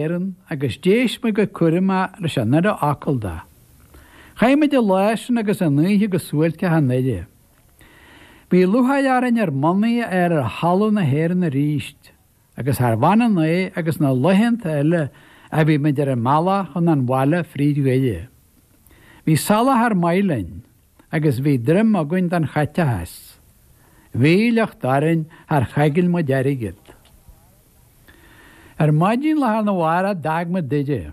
Éireann, agus d'éist mé go cúramach leis an uile fhocal de. Chaith muid an lá sin agus an oíche go suáilceach i nDoire. Bhí lúcháir orainn ár mbonnaí a fháil ar thalamh na hÉireann arís, agus charbh ionann é agus na laethanta eile a bhí muid ar an mbealach chun an bhaile fríd Dhoire, bhí soláthar maith linn. agus bhí droim againn don chaiteachas. Bhí a shliocht orainn, char choigil muid airgead. Ar maidin lá arna mhárach d'fhág muid Doire.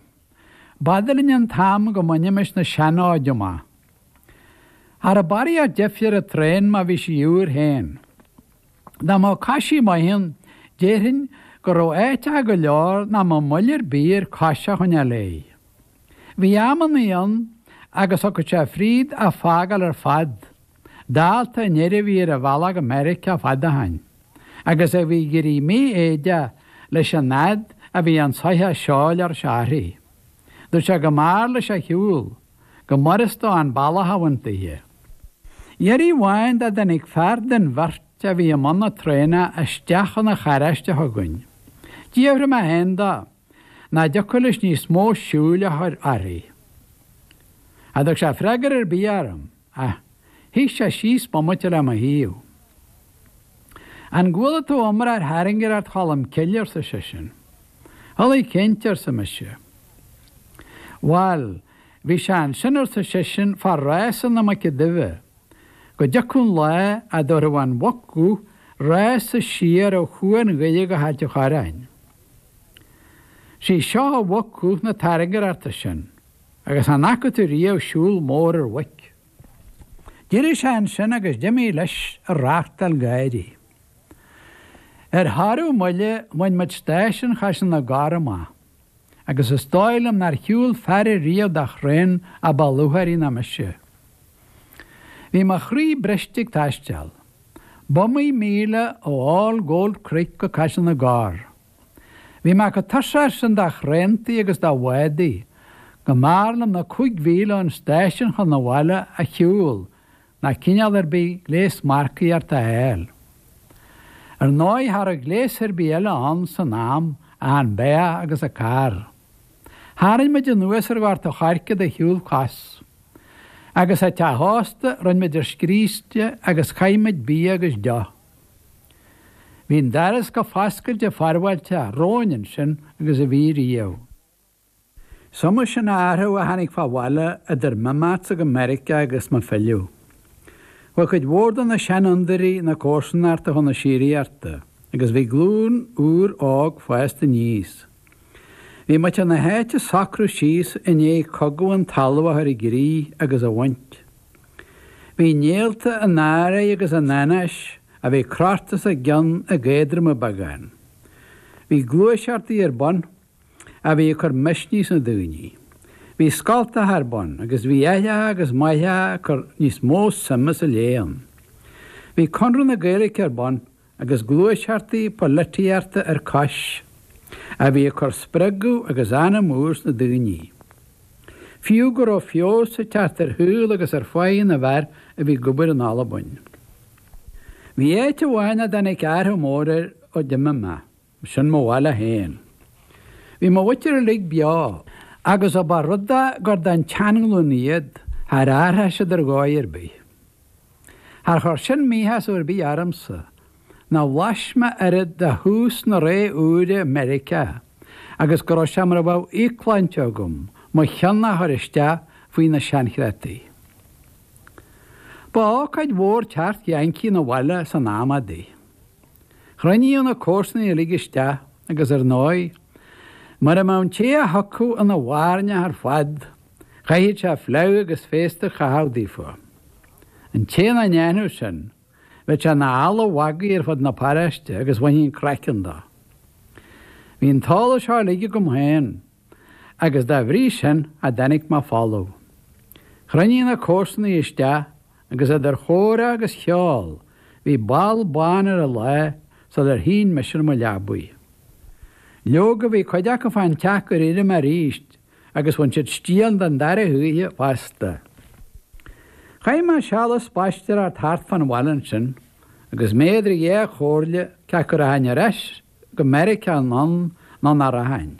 B'fhada linn an t-am go mbainimis na seanfhóide amach. Cha rabh barraíocht deifre ar an traein má bhí sí úr féin. Dá mbeadh coisí maith ann, déarfainn go raibh áiteacha go leor nach mbeadh moill ar bith air cos a choinneáil léi. Bhí amannaí ann agus thiocfadh sé fríd a fágáil ar fad, dálta an fhir a bhí ar a bhealach go Meiriceá fad ó shin, agus a bhí ag éirí mífhoighdeach leis an fhad a bhí an soitheach seoil ar a shárthaigh. Dúirt sé go mb'fhearr leis a shiúl. go mb'fhurast dó an bealach a bhaint dithe. Iarraidh amháin dá dtáinig fear den bheirt a bhí i mbun na traenna isteach chun an charráiste chugainn. D'fhiafraigh mé féin dó nach dtiocfadh leis níos mó siúil a chur uirthi. Cha dtug sé freagar ar bith orm. Ach shuigh sé síos bomaite le mo thaobh. An gcuala tú iomrá ar thairngireacht Cholm Cille, arsa seisean. Chuala, cinnte, arsa mise. Bhail, bhí sé ansin, arsa seisean, fá rása na muice duibhe, go dtiocfadh an lá a dtabharfadh an mhuc dhubh rása siar ó Chuan Dhoire go hAilt an Chorráin. Sí seo an mhuc dhubh na tairngireachta sin. Agus an bhfaca tú riamh siúl mór ar mhuic? D'eirigh sé annsin agus d'imthigh leis ag reachtáil gáirí. Ar shárú moille bhain muid stáisiún Chaiseal na gCorr amach, agus is dóigh liom nár shiúl fear ariamh de thraen a ba lúcháirí ná mise. Bhí mo chroí briste ag taisteal. B'iomaí míle ó All Gold Creek go Caiseal na gCorr. Bhí mé chomh tuirseach sin de thraentaí agus de bhádaí, go mb'fhearr liom na cúig mhíle ón stáisiún chun an bhaile a shiúl ná cineál ar bith gléas marcaíochta a fháil. Ar ndóigh, cha rabh gléas ar bith eile ann san am ach an beathach agus an carr. Tharraing muid anuas ar Ghort an Choirce de shiúl cos. Agus, i dteach ósta, rinne muid ar scríste agus chaith muid bia agus deoch. Bhí an doras chomh foscailte forbháilteach romhainn ansin agus a bhí riamh. Is iomaí sin athrú a tháinig fá bhaile idir m'imeachtsa go Meiriceá agus mo philleadh. Bhí cuid mhór de na seanfhondúirí na comharsanachta chun na síoraíochta agus bhí glúin úr óg fásta aníos. Bhí muintir na háite ag socrú síos i ndiaidh Cogadh an Talaimh a chur i gcrích agus a bhaint. Bhí néalta an anró agus an anáis a bhí crochta os a gcionn ag éadromú beagán. Bhí gluaiseachtaí ar bun a bhí ag cur misnigh sna daoine. Bhí scoltacha ar bun agus bhí aithreacha agus máithreacha ag cur níos mó suime sa léann. Bhí Connradh na Gaeilice ar bun agus gluaiseachtaí polaitíochta ar cois, a bhí ag cur spreagadh agus anam úr sna daoine. Fiú go raibh feabhas ag teacht ar shaol agus ar pháighe na bhfear a bhí ag obair in Albain. Bhí áit amháin nach dtáinig athrach mór air ó d'imigh mé. Sin mo bhaile féin. Bhí mo mhuintir uilig beo agus ó ba rud é gur den tseanghlúin iad, char athraigh siad ar dhóigh ar bith. Char chuir sin míshásamh ar bith ormsa, ná bhlais mé oiread de thús na ré úire i Meiriceá agus go raibh sé mar a bheadh íocshláinte agam mo chionn a chur isteach faoi na seanchreataí. Ba ócáid mhór teacht Yankee 'na bhaile san am adaí. Chruinníodh na comharsanaigh uilig isteach agus ar ndóigh, mura mbeadh an té a thiocfadh ina bhairneach ar fad, chaithfeadh sé fleadh agus féasta a chaitheamh daofa. An té nach ndéanfadh sin, bheadh sé ina eala mhagaidh ar fud na paráiste agus bhainfí an craiceann de. Bhí an t-eolas seo uilig agam féin. agus dá bhrí sin cha dtáinic mé folamh. Chruinnigh na comharsanaigh isteach agus idir chomhrá agus cheol bhí ball bán ar an lá sular shín mise ar mo leabaidh. Leoga bhí cuid acu fán teach gur éirigh mé arís agus bhain siad stiall den dara hoíche fosta. Chaith mé seal ag spaisteoireacht thart fán bhaile ansin agus mé idir dhá chomhairle cé acu rachainn ar ais go Meiriceá anonn nó nach rachainn.